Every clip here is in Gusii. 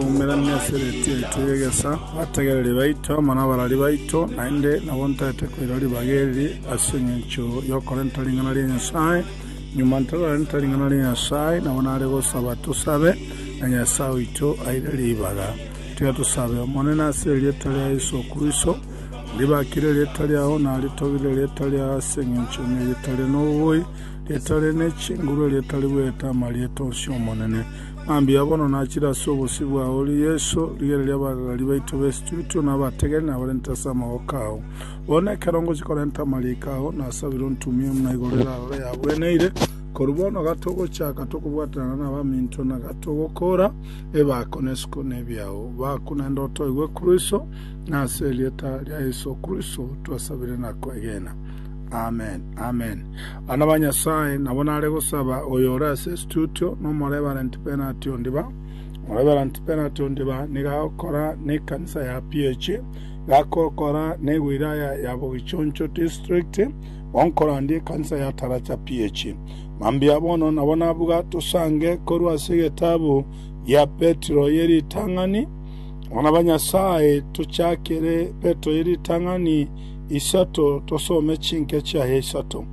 Oumera Misiri tiaitwe gegesa, abategereri baito amo nabarari baito, naende nabo ntaete koira ribaga eri ase engencho y'okorenta ring'ana ria Nyasae. Nyuma ntararenta ring'ana ria Nyasae, nabo nare gosaba tosabe, na Nyasae oito aire ribaga. Tiga tosabe. Omonene, ase erieta ria Yeso Kristo, ndibakire erieta riao, naritogire erieta riao ase engencho nerieta rire nobobui, rieta rire ne chinguru, erieta ribuyaete amarieta onsi, Omonene. Mambia bono nachire ase obosio bwao, ore Yeso, rigena ri'abagagaria baito b'esituritwe na abategene abarente ase amaboko ao. Bono ekero ngochia korenta amariiko ao, nasabire ontumie buna igoro erarore yagweneire. Korwa bono gatogochaka tokobwatanana nabaminto na gatogokoora ebaako na isiko nebiao baku, naende otoigwe Kristo, na ase erieta ria Yeso Kristo twasabire na kwegena. Amen. Amen. Abana ba Nyasae nabo nare gosaba oyo ore ase studio nomoreverent penalty ondiba. Omoreverent penalty ondiba nigo agokora ne ekanisa ya PH, iga agokora ne ewilaya ya Bogichoncho district, bonkorandia ekanisa ya Taracha PH. Mambia bono nabo nabuga tosange korwa ase egetabu gia Petero ye ritang'ani. Abana ba Nyasae tochakere Petero ye ritang'ani isato tosome chinke chiaye isato.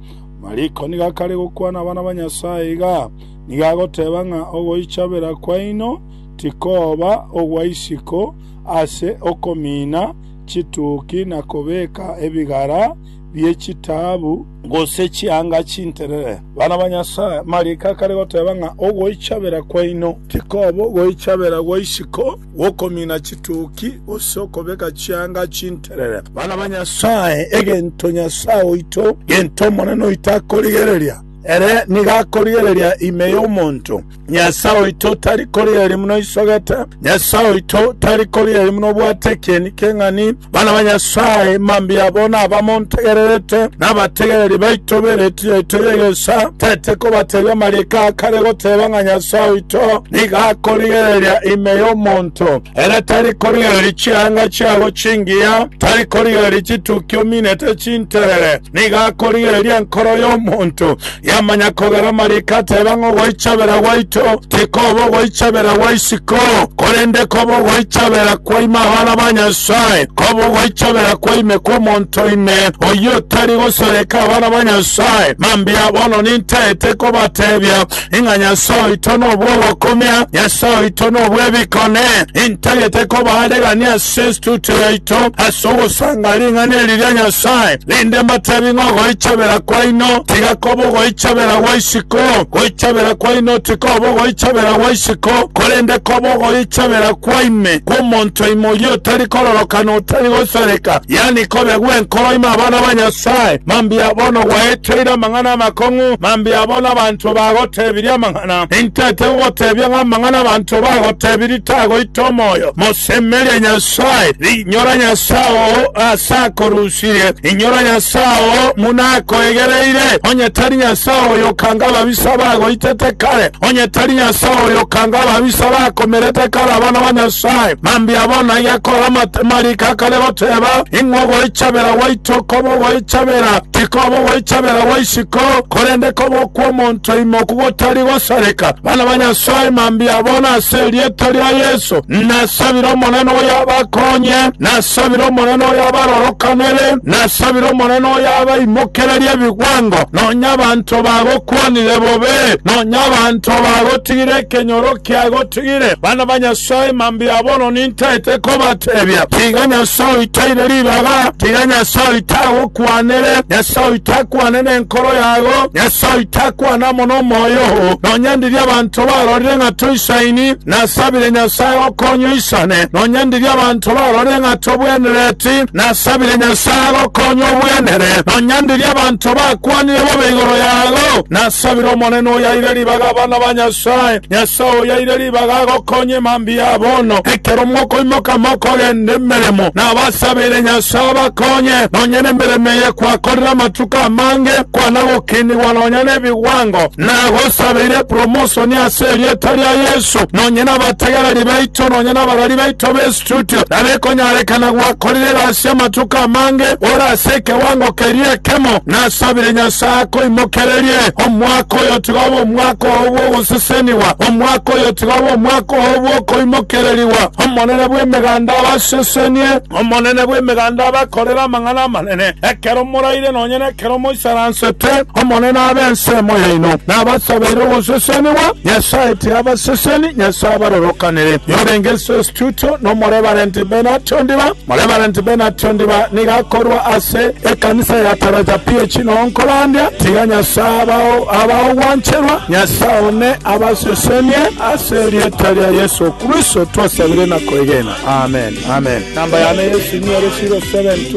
Mariko nigo akare gokwana abana ba Nyasae iga, Nigo agoteba ng'a ogoichabera kwaino tikoba ogwa isiko ase okomiina chituki na kobeka ebigara bie chitaabu gose chianga chinterere. Bana ba Nyasae, Mariko akare goteba ng'a ogoichabera kwaino tikoba ogoichabera gwa isiko. Gokomina chituki gose okobeka chianga chinterere. Bana ba Nyasae, egento Nyasae oito, gento Omonene oito akorigereria, ere nigo akorigereria ime y'omonto. Nyasae oito tari korigereria buna oisogete. Nyasae oito tari korigereria buna obwate ekieni keng'ani. Bana ba Nyasae, mambia abo naba montegererete, nabategereri baito b'Eretio yaito y'egeesa, tete kobateebia amariiko a kare goteeba ng'a Nyasae oito nigo akorigereria ime y'omonto, ere tari korigereria chianga chiabo chingiya, tari korigereria chitukia ominete chinterere, nigo akorigereria enkoro y'omonto, Yamanya kogera amariiko ateeba ng'a ogoichabera gwaito tikoba ogoichabera gwa isiko, korende koba ogoichabera kwa ime abana ba Nyasae, koba ogoichabera kwa ime kw'omonto ime, oyio otari gosoreka abana ba Nyasae. Mambia bono nintaete kobateebia ng'a Nyasae oito nobw'ogokumia, Nyasae oito nobw'ebikone. Intagete kobaarigania ase Kristo chiaito ase ogosanga ring'ana eri ria Nyasae, rende mbatebi ng'a ogoichabera kwaino tiga koba ogoichabera gwa isiko. Goichabera kwaino tikoba ogoichabera gwa isiko, korende koba ogoichabera kwa ime, kw'omonto ime oyio otari kororoka na otari gosareka, yaani kobe gw'enkoro ime abana ba Nyasae. Mambia bono gwaeteire amang'ana amakong'u, mambia bono abanto bagotebirie amang'ana. Bwana, intete gogotebia ng'a amang'ana abanto bagotebirie tagoita omoyo. Mosemerie Nyasae, rinyora Nyasae oo aase akorusirie, rinyora Nyasae oo buna akoegereire, onye tari Nyasae oyo okanga ababisa bagoitete kare, onye tari Nyasae oyo okanga ababisa bakomerete kare abana ba Nyasae. Mambia bono iga kore amatemariko akare goteba, Ing'we ogoichabera gwaito koba ogoichabera, tikoba ogoichabera gwa isiko, korende koba okw'omonto Toimoku gotari gosareka, bana ba Nyasae mambia bono ase erieta ria Yeso. Nasabire Omonene oyabakonye, nasabire Omonene oyabarorokanere, nasabire Omonene oyabaimokererie ebigwango, nonya abanto bagokwanire bobe, nonya abanto bagotigire ekenyoro kiagotigwe. Nabatebirie, bana ba Nyasae, mambia bono nintaete kobatebia, tiga Nyasae oito aire ribaga, tiga Nyasae oito agokwanere, Nyasae oito akwane nenkoro yago, Nyasae oito akwane amo nomoyo oo. Nonya ndiria abanto barorire ng'a toisaini, nasabire Nyasae agokonye oisane. Nonya ndiria abanto barorire ng'a tobwenereti, nasabire Nyasae agokonye obwenere. Nonya ndiria abanto bakwanire bobe igoro yago, nasabire Omonene oyo aire ribaga abana ba Nyasae. Nyasae oyaire ribaga agokonye mambia bono, ekero mokoimoka mokogenda emeremo, nabasabeire Nyasae abakonye, nonya nemeremo eye kwakorire amatuko amange, kwana gokinigwa nonya nebigwango. Nagosabeire epromosoni ase erieta ria Yesu, nonya nabategereri baito, nonya nabarari baito b'esuba. Tutio, narekonyorekana gwakorire gasi amatuko amange ore ase ekewango keria ekemo, nasabire Nyasae akoimokererie omwaka oyo tiga obe omwaka oo bw'ogosesenigwa, omwaka oyo tiga obe omwaka oo bw'okoimokererigwa. Omonene bw'Emeganda abasesenie, Omonene bw'Emeganda abakorere amang'ana amanene ekero moraire, nonya ne. Kera omoisaransete Omonene abe ensemo yaino, nabasabeire ogoseseniwa, Nyasae tiabaseseni, Nyasae abarorokanere. Yorenge ase estudio n'Omoreverenti Bernard Ondiba. Moreverenti Bernard Ondiba nigo akorua ase ekanisa ya Taraja PAC noo nkorandia. Tiga Nyasae abao abaogwancherwa, Nyasae one abasesenie, ase erieta ria Yeso Kristo twasabire na koegena. Amen. Amen. Namba yane Yesu niere 0725.